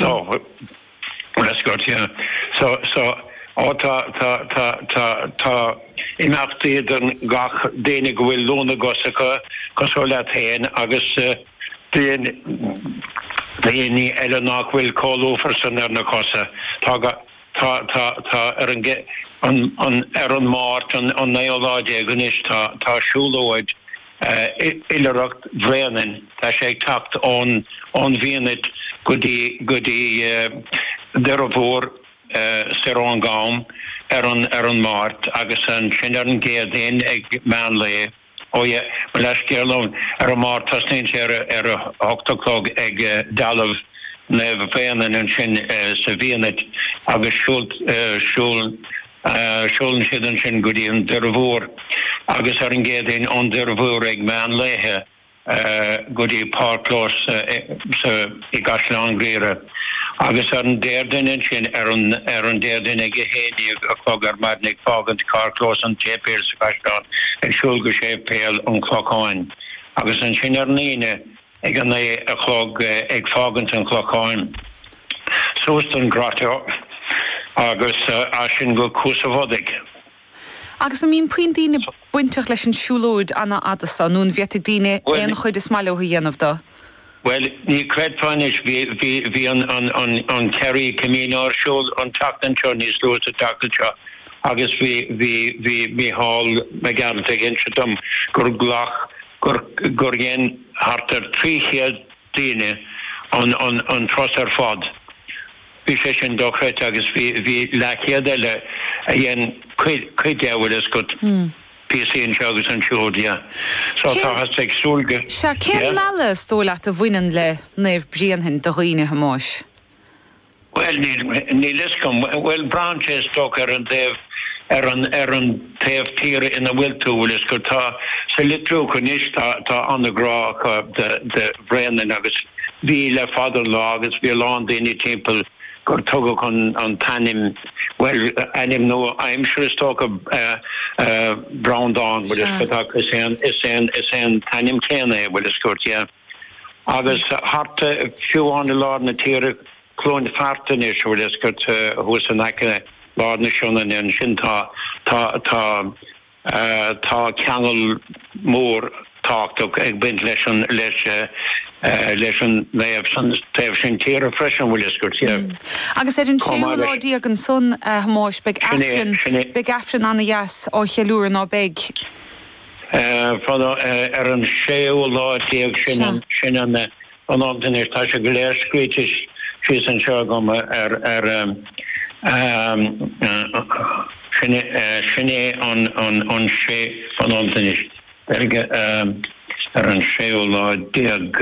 Tá bhfuil 'fhios agat, yeah. So, so, oh, tá, tá, tá, tá, tá imeachtaí don gach daoine go bhfuil lúth na gcos acu, cosúil leat féin, agus daoine, daoine eile nach bhfuil chomh lúfar san ar na cosa. Tá go, tá, tá, tá ar an, an, an, ar an Máirt, an, an naoú lá déag anois, tá, tá siúlóid oilithreacht Bhréanainn, tá sé ag teacht ón bhFianait go dtí Doire Mhór soir ón gCam ar an Máirt agus ansin ar an gCéadaoin ag meán lae, ó, eh, mo leithscéal, ar an Máirt tosnaíonn sé ar a hocht a chlog ag dealbh Naomh Bhréanainn ansin sa bhFianait agus siúl Siúlann siad ansin go dtí an Doire Mhór agus ar an gCéadaoin ón Doire Mhór ag meán lae go dtí Páirc Clós i gCaisleán Ghriaire agus ar an Déardaoin ansin, ar an Déardaoin ag a haon déag a chlog ar maidin ag fágaint carrchlós an tSéipéil sa Chaisleán ag siúl go Séipéal an Chlocháin agus ansin ar an Aoine ag a naoi a chlog ag fágaint an Chlocháin, suas don Grotto agus as sin go Cuas a' Bhodaigh. Agus an mbíonn puinn daoine bainteach leis an siúlóid an-fhada san, nó an bhféadfadh daoine aon chuid is maith leo a dhéanamh do? Bhuel, ní chreidfeá anois, bhí an Kerry Camino ar siúl an tseachtain seo, níos luaithe sa tseachtain seo, agus bhí Micheál Mac Gearailt ag inse dom gur ghlac gur dhein thart ar 300 daoine an turas ar fad. Bhí sé sin dochreidte agus bhí leathchéad eile a dhein cuid de, bhfuil fhios agat, píosaí anseo agus ansiúd, yeah. So táthas ag súil go, yeah. Cén mealladh, is dóigh leat, a bhaineann le Naomh Bréanainn do dhaoine, a Thomáis? Bhuel, níl, níl 'fhios agam. Bhuel, braitheann sé, is dócha, ar an taobh, ar an, ar an taobh tíre ina bhfuil tú, bhfuil 'fhios agat. Tá, sa Leitriúch anois, tá, tá an-ghrá acu de, de Bhréanainn agus bhí le fada an lá agus bhí a lán daoine timpeall gur tugadh an, an t-ainm, bhuel, ainm nua-aimseartha, is dócha, eh, eh, Breandán, bhfuil 'fhios agat, ach is é an, is é an, is é an t-ainm céanna é, bhfuil 'fhios agat, yeah. Agus thart fiú amháin i lár na tíre, Cluain Fearta anois, bhfuil 'fhios agat, thuas in aice lár na Sionainne ansin, tá, tá, tá, tá ceangal mór tábhachtach ag baint leis an, leis, leis an naomh san taobh sin tíre freisin, bhfuil 'fhios agat. Agus ar an séú lá déag ansan, a Thomáis, beidh Aifreann, beidh Aifreann ana-dheas á cheiliúradh, ná beidh? Fada ar an séú lá déag sin an am sin anois, tá sé go léir scríte síos anseo agam ar Sin é an sé an am sin anois, Gaeilge, ar an séú lá déag.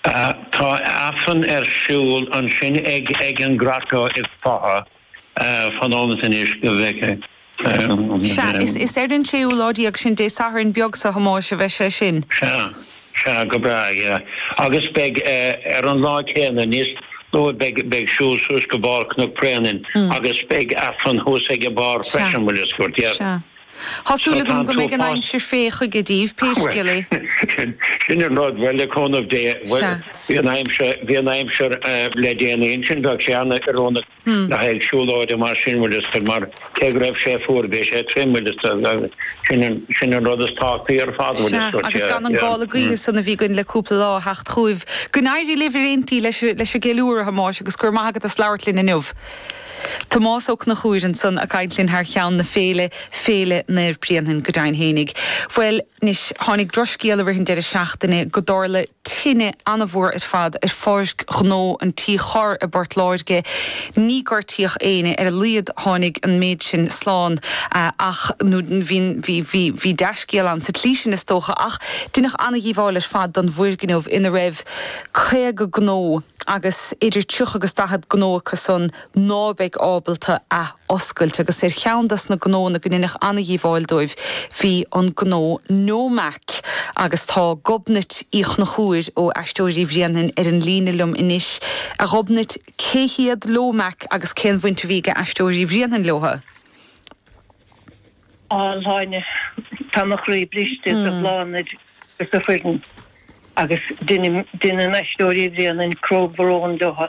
Tá aifreann ar siúl ansin ag an Grotto i bhFaiche. Fan nóiméad anois go bhfeicfidh. Sea, is ar an séú lá déag sin Dé Sathairn beag seo, a Thomáis, a bheidh sé sin. Sea, sea, go breá, yeah. Agus beidh, ar an lá céanna, níos luaithe, beidh, beidh siúl suas go barr Chnoc Bréanainn agus beidh Aifreann thuas ag a barr freisin, bhfuil fhios agat, yeah. Sea. Tá súil agam go mbeidh an aimsir fé chuige díbh, pé scéal é. Sin an rud, bhuel le cúnamh Dé, bhuel bhí an aimsir, bhí an aimsir le déanaí ansin, bheadh sé an-oiriúnach le haghaidh siúlóide mar sin bhfuil fhios a'd, mar cé go raibh sé fuar bhí sé tirim bhfuil fhios a'd agus sin an, sin an rud is tábhachtaí ar fad bhfuil fhios a'd. Sea, agus gan an gála gaoithe san a bhí againn le cúpla lá a theacht chugaibh. Go n-éirí libh ar aon tslí leis an, leis an gceiliúradh a Thomáis agus go raibh maith agat as labhairt linn inniu. Tomás Ó Conchúir ansan a' caint linn thar cheann na féile, Féile Naomh Bréanainn go deimhin fhéinig. Bhuel, anois, tháinig drochscéal i rith an deireadh seachtaine go dtarla tine ana-mhór ar fad ar pháirc ghnó an Tí Chorr i bPort Láirge. Ní gortaíodh éinne, ar a laghad tháinig an méid sin slán, ach, nó bhí, bhí, bhí, bhí dea-scéal ann sa tslí sin is dócha, ach deineadh ana-dhíobháil ar fad don bhfoirgneamh ina raibh caoga gnó, agus idir 30 agus 40 gnó acusan ná beidh ábalta athoscailt, agus ar cheann des na gnóanna go ndeineadh ana-dhíobháil dóibh bhí an gnó Nomac, agus tá Gobnait Uí Chonchúir ó Aisteoirí Bhréanainn ar an líne liom anois. A Ghobnait, cé hiad Nomac agus cén bhaint a bhí ag Aisteoirí Bhréanainn leotha? A Shláine, tá mo chroí briste do Bhláthnaid agus a foireann agus deineann Aisteoirí Bhréanainn comhbhrón leotha.